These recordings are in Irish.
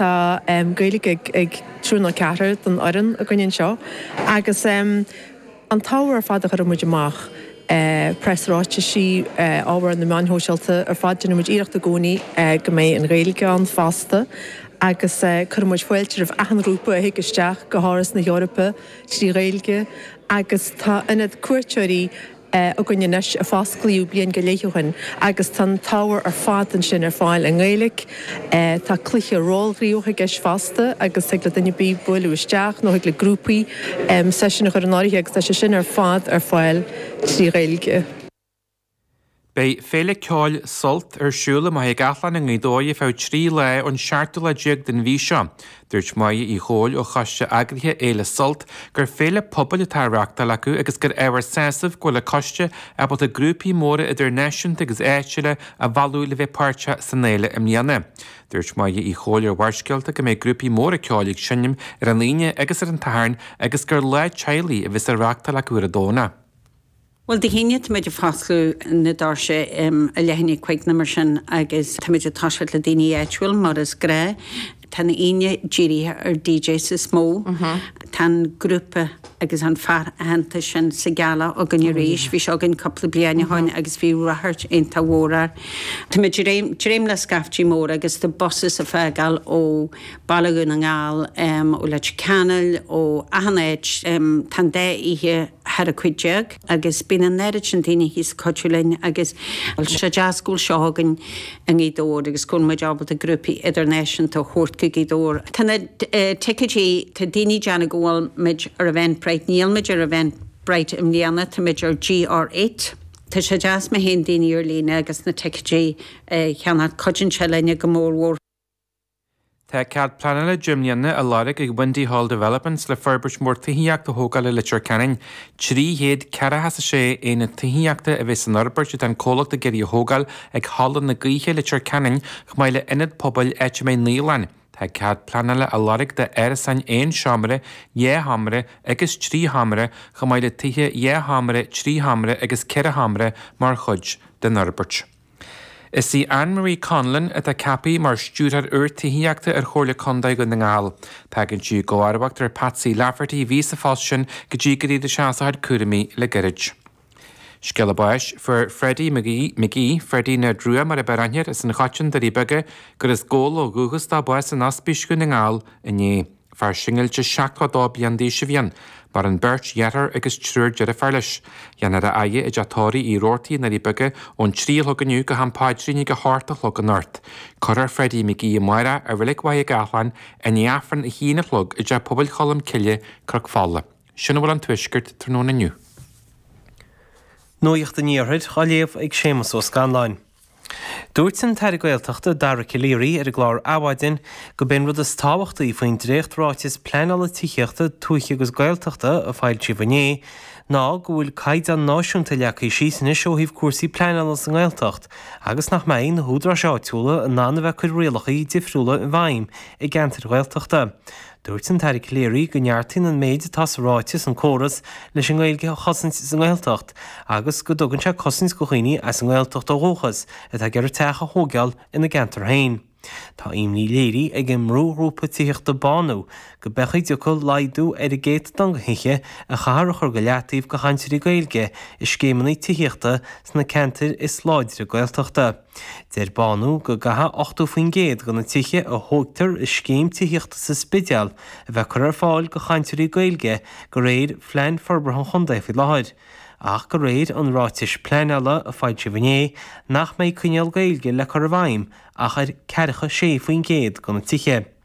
Tá Gaeilge ag triúr nó ceathrar den fhoireann againn anseo agus an t-ábhar ar fad a chuireann muid amach, preasráitisí, ábhar ar na meáin shóisialta ar fad, déanann muid iarracht i gcónaí go mbeidh an Ghaeilge ann fosta agus cuireann muid fáilte roimh achan ghrúpa a thig isteach go hÁras na hEorpa trí Ghaeilge agus tá ionad cuairteoirí, againn anois a fosclaíodh bliain go leith ó shin agus tá an t-ábhar ar fad ansin ar fáil i nGaeilge. Tá cluiche rólghníomhaíochta i gceist fosta agus thig le duine ar bith bualadh isteach nó thig le grúpaí seisiún a chur in áirithe agus tá sé sin ar fad ar fáil trí Ghaeilge. Beidh Féile Ceoil Sult ar siúl i mBaile Gathlán i nGaoth Dobhair ar feadh trí lá ón seachtú lá déag den mhí seo. Dúirt Moya Uí Chomhaill ó choiste eagraithe Fhéile Sult gur féile pobail atá á reáchtáil acu agus gur ábhar sásaimh go bhfuil an coiste ábalta grúpaí móra idirnáisiúnta agus áitiúla a mhealladh le bheith páirteach san fhéile i mbliana. Dúirt Moya Uí Chomhaill ar Bharrscéalta go mbeidh grúpaí móra ceoil ag seinm ar an Aoine agus ar an tSatharn agus gur lá teaghlaigh a bheas á reáchtáil acu ar an Domhnach. Bhuel, Dé hAoine táimid ag foscladh na doirse ag a leath i ndiaidh a cúig nó mar sin agus táimid ag toiseacht le daoine áitiúil mar is gnách. Tá an Aoine dírithe ar DJs is mó. Tá an grúpa agus an fear aitheanta sin Sigala againn arís. Bhí sé againn cúpla bliain ó shoin agus bhí ráchairt iontach mhór air. Táimid ag dréim le scaiftí móra agus tá busanna ag fágáil ó Baile Dhún na nGall, em. ó Leitir Ceanainn, ó, achan áit, em, tá an dá oíche thar a hocht déag agus bíonn an oiread sin daoine thíos ag cuidiú linn agus, tá sé deas go bhfuil seó againn i nGaoth Dobhair agus go bhfuil muid ábalta grúpaí idirnáisiúnta a thabhairt go Gaoth Dobhair. Tá na, eh, ticéidí, tá daoine ag déanamh go bhfuil muid ar Eventbrite, níl muid ar Eventbrite i mbliana, tá muid ar GR eight. Tá sé deas má théann daoine ar líne agus na ticéidí a cheannach, cuidíonn sé linne go mór mhór. Tá cead pleanála deich mbliana á lorg ag Windy Hall Developments le forbairt mhór tithíochta a thógáil i Leitir Ceanainn. Trí chéad ceathracha is a sé aonad tithíochta a bheidh san fhorbairt atá an comhlacht ag iarraidh a thógáil ag Halla na Gaoithe, Leitir Ceanainn, chomh maith le ionad pobail áit a mbeidh naíolann. Tá cead pleanála á lorg d'árasáin aon seomra, dhá sheomra agus trí sheomra, chomh maith le tithe dhá sheomra, trí sheomra agus ceithre sheomra mar chuid den fhorbairt. Is í Anne Marie Conlon atá ceaptha mar Stiúrthóir úr Tithíochta ar Chomhairle Contae Dhún na nGall. Tagann sí i gcomharbacht ar Patsy Lafferty a bhí sa phost sin go dtí gur éirigh sé as a chuid cúraimí le gairid. Scéala báis, fuair Freddie Mac Aoidh, Freddie na Drua mar ab fhearr aithne air as an Choiteann Doirí Beaga agus as Gabhla ó dhúchas dó bás in Ospís Dhún na nGall inné. Fear singilte 72 bliain d'aois a bhí ann, maireann beirt dheartháir agus triúr deirfiúr leis. Déanfar a fhaire i dteach tórraimh Uí Rabhartaigh i nDoirí Beaga ón trí a chlog inniu go ham paidrín ag a hocht a chlog anocht. Cuirfear Freddie McGee amárach i Reilig Mhachaire Gathlán i ndiaidh Aifreann a haon a chlog i dTeach Pobail Cholm Cille, Cnoc Fola. Sin a bhfuil ón Tuaisceart tráthnóna inniu. Nuacht an Iarthair á léamh ag Séamus Ó Scanláin. Dúirt an tAire Gaeltachta Dara Calleary ar an gclár Adhmhaidin gurb é an rud is tábhachtaí faoin dréacht-Ráiteas Pleanála Tithíochta, Tuaithe agus Gaeltachta a foilsíodh inné ná go bhfuil caighdeán náisiúnta leagtha síos anois ó thaobh cúrsaí pleanála sa nGaeltacht agus nach mbeidh na húdaráis áitiúla in ann a bheith ag cur rialacha difriúla i bhfeidhm i gceantair Ghaeltachta. Dúirt an tAire Calleary go neartaíonn an méid atá sa ráiteas an córas leis an nGaeilge a chosaint sa nGaeltacht agus go dtugann sé cosaint do dhaoine as an nGaeltacht ó dhúchas atá ag iarraidh teach a thóigeáil ina gceantar féin. Tá imní léirithe ag an mbrúghrúpa tithíochta Bánú go bhféadfadh go dtiocfadh laghdú ar an gcéatadán de thithe a chaithfear a chur go leataobh do chainteoirí Gaeilge i scéimeanna tithíochta sna ceantair is láidre Gaeltachta. Deir Bánú go gcaithfidh 80% de na tithe a thógtar i scéim tithíochta sa Spidéal a bheith curtha ar fáil do chainteoirí Gaeilge de réir Phlean Forbartha an Chontae faoi láthair, ach de réir an ráitis pleanála a foilsíodh inné nach mbeidh coinníoll Gaeilge le cur i bhfeidhm ach ar 46% de na tithe.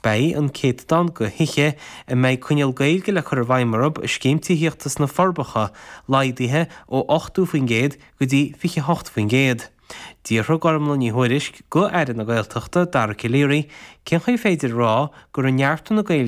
Beidh an céatadán de thithe a mbeidh coinníoll Gaeilge le cur i bhfeidhm orthu i Scéim Tithíochta sna Forbacha laghdaithe ó 80% go dtí 28%. D'fhiafraigh Gormfhlaith Ní Thuairisg d'Aire na Gaeltachta, Dara Calleary, cén chaoi ar féidir a rá go raibh neartú na Gaeilge